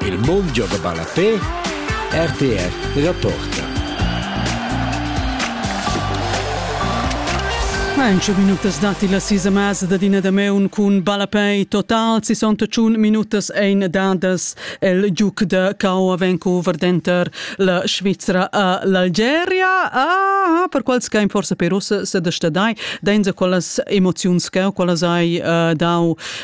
Il mund gioga ballapè, rtr reporta. Main tscheu minutas datti la sisa mesa dad ina da meun cun ballapei total 61 minutas ein dadas el giuc da Cao Avenco Verdenter la Svizra a l'Algeria ah per quals che forse per us se destadai dainza quellas emoziuns che quellas hai uh, dau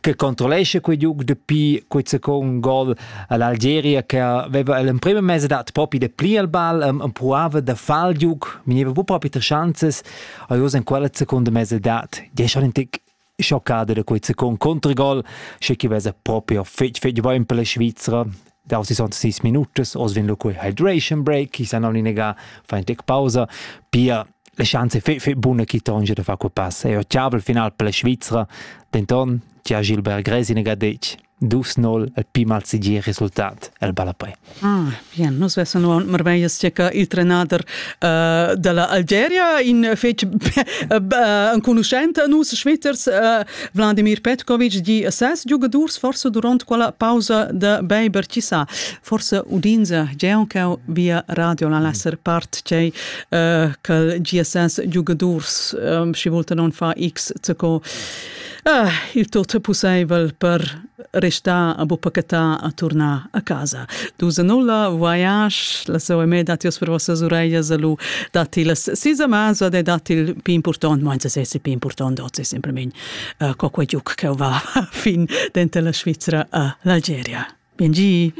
che controllescha quei giug dapi quei second gol all'Algeria che aveva l'emprima mese dat propi de pli al ball um, empruava da far il giug veniva bu propi tre chances e in quella seconda mese dat die schon ein tick schoccata da quei second Kontragol, sche chi vesa proprio fetg fetg bon per la Svizzera davos sis sis minutas oz vin lu quei hydration break chi san oli nega fa in tec pausa pia le chance fe fe buna chi tonge da far quei pass e ho ciavel final per la Svizra denton tia Gilbert Gresi nega detg dus 0 al pi mal segir resultat el Balapei. Ah, bien, nus vessen uaun marveias che ca il trenader uh, della Algeria in fec uh, enconuschent a nus Schwitters uh, Vladimir Petkovic di a ses giugadurs forse durant quella pausa da beiber ci sa forse udinza Geoncau via radio la lesser part cei uh, che GSS giugadurs um, si volta non fa x co uh, il tot possibel per restà a buppa catà a turnar a casa. Dus a nulla, voyage, la sua me datti os per vossas ureglias a lu, datti las sis amas e datti il più important, ma anzi se più important, oggi semplicemente uh, co quei giuc che va fin dentro la Svizzera a l'Algeria. Bien gi!